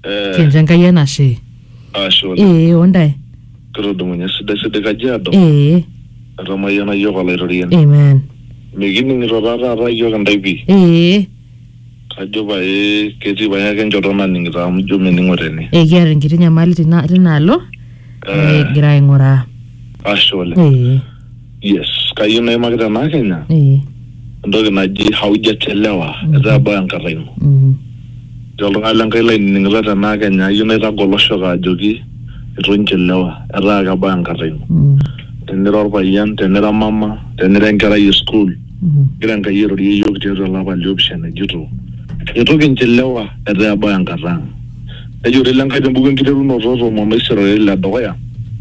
Eh, kincho enkai enashe ashe oleng. ee ondae Kitudumunye sidai sidai Kajiado. ee Etamayiana yiok olaitoriani. amen Mikining'ito taa taata yiok intae pii. ee Kajo pae ketii pae ake enchoto naning'ito amu ijo mening'o tene. ee kiata enkiti nyamali tina tinaalo Eh, egira aing'uraa ashe oleng. ee Yes, kayieu naimaki tenaa Kenya ee entoki naji haujachelewa etaa ebau enkata ino. mhm, Etii oltung'ani le Nkai lainining'ito tenaa Kenya ayieu naitagol oshoka ajoki itu inchelewa etaa ake ebau enkata ino. mhm, Tenira orpayian, tenira mama, tenira enkerai e sukuul mhm, egira Enkai airorie iyiook tiatua ele apa liopishana ejito itu kinchelewa etaa ebau enkata ang'. nejurri ile Nkai tembuku enkiterunoto tomon oisirori le dukuya.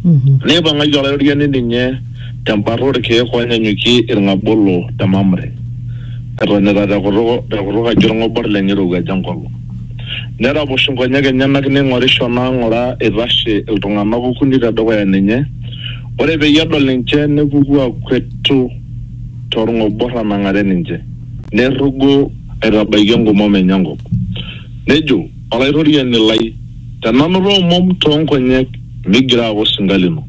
Mhm. Neipang'aki Olaitoriani ninye tembata olkeek oonyanyukie ilng'abolo te Mamre, etonita te kutuk te kutuk aji olng'obor lenye eirowuaja enkolong. Neraposh inkonyek enyenak neing'orisho naa ng'ura eitashe iltung'ana okuni te dukuya ninye, ore peyie edol ninche nepuku akuetu to lng'obor anang'are ninche, neirrugo aitabaiki engumom enye enkop. Nejo Olaitoriani lai, Tenanoto omom too nkonyek migira aaku osinka lino.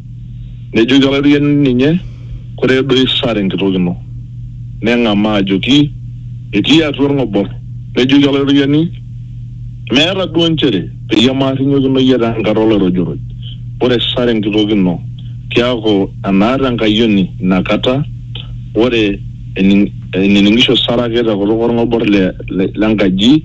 Nejoki Olaitoriani ninye, Koree duo isaa te nkitok ino? Neng'amaa ajoki, Etii atua olng'obor. Nejoki Olaitoriani, Meeta duo nchere peyie maarrinyokino iyie te nkata oloirojoroj, ore isaa te nkitok ino keaku enaata enkayioni ina kata, ore enining'isho Sara ake te kutuk olng'obor le nkaji,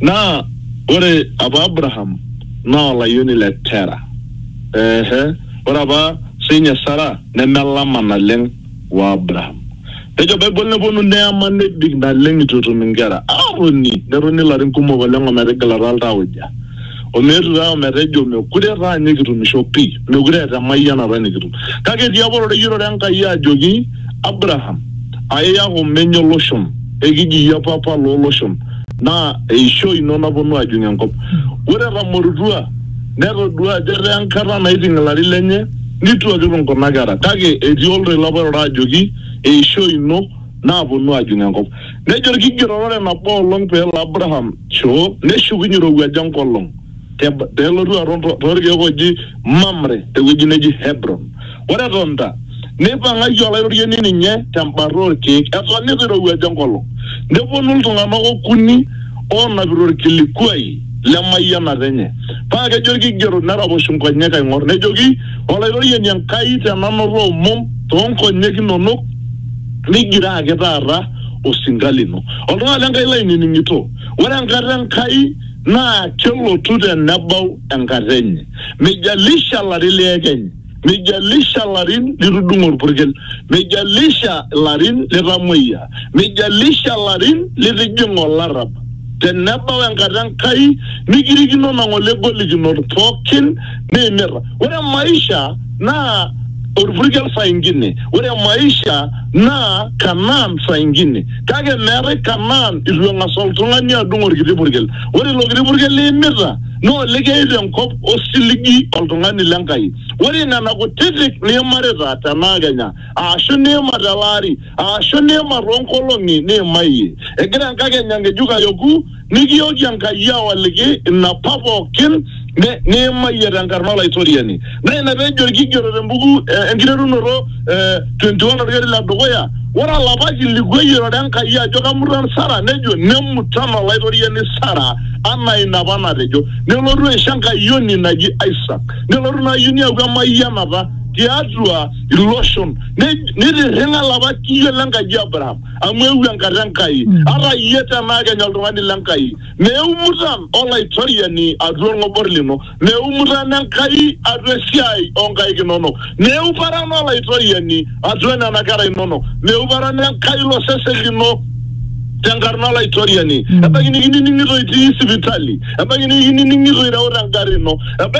naa ore apa Abraham naa olayioni le Tera. Ehe, ore apa sinye Sara nemelama naleng o Abraham. Nejo Bible neponu neema nebik naleng eitu etum inkera. Aatoni netoni ilarin kumok oleng o metigilata oltauja. omeetu taa ometejo mekure taa ninye kitumisho pii, mekure eeta emayianata nikitum. Kake etii apa oteyiorore Enkai ajoki Abraham, Aiyaku menye o loshon, ekiji iyie papa loo loshon, naa eishoi ino naponu ajing enkop. Ore etamorutua, netodua ajo etaa enkata naiting ilarin lenye, neituakiruk nkuna kera. Kake etii oltoilo apa oirura ajoki, Eishoi ino. naaponu aajung enkop. Nejo Olkigeroto ore nabo olong pee elo Abraham shoo neshukunye eirowuaja enkolong te pee elotu aton too lkeek ooji Mamre te wueji neji Hebron. Ore etonita, neipang'aki Olaitoriani ninye te mbata oo lkeek eton eitu eirowuaja enkolong. Nepuonu iltung'ana okuni oonapita olkilikuai le mayianata enye. Paa kejo Olkigeroto neraposhu nkonyek aing'or nejoki Olaitoriani Enkai te nanoto omom too nkonyek inono, nigira ake taata osinka lino. Oltung'ani Lenkai lainining'ito, ore enkata Enkai naa kelotu tenebau enkata enye. Meijalisha larin liekeny, meijalisha larin litudung'o olpurkel, meijalisha larin litamuoyia, meijalisha larin litijing'a olarrab, tenebau enkata Enkai nikirikino nang'ole golikinot pooki niimirra. Ore maisha naa orpurkel saa ingine, ore maisha naa Kanaan saa ingine. Kake meetae Kanaan itu eng'as oltung'ani adung orkiti purkel. Ore ilo kiti purkel liimita naa olikiyayu tenkop osiligi oltung'ani le Nkai. Ore nena kutitik niimarita tenaa kenya aashu niima tele ari aashu niima too nkolong'i niimayie egira enkakenya ng'ejuk ayoku Nikiyooki Enkai awaliki inapa pooki niimayie te nkarna Olaitoriani. Naa ina pee ejo olkigeroto te mbuku Enkiterunoto 21 olkeri le dukuya, Ore olapa kiliku eyiolore Enkai ajo kemutan Sara nejo, Nemutan Olaitoriani Sara anaa ina apa natejo. Nelotu aisho enkayioni naji Isaak. Nelotu ina ayioni aaku emayianata tiatua iloshon, neitirring'a lapa kiyo le Nkaji e Abraham. amu eewuo enkata Enkai, ata iyie tenaa kenya oltung'ani le Nkai. Meumutan Olaitoriani atua olng'obor lino, meumutan Enkai atua esiai oo nkaik inono, meuparan Olaitoriani atua nena kera inono, meuparan Enkai ilo sesen lino te nkarna Olaitoriani. Ebaiki nikinining'ito itii sipitali, ebaiki nikinining'ito ireuta engarri ino, ebaiki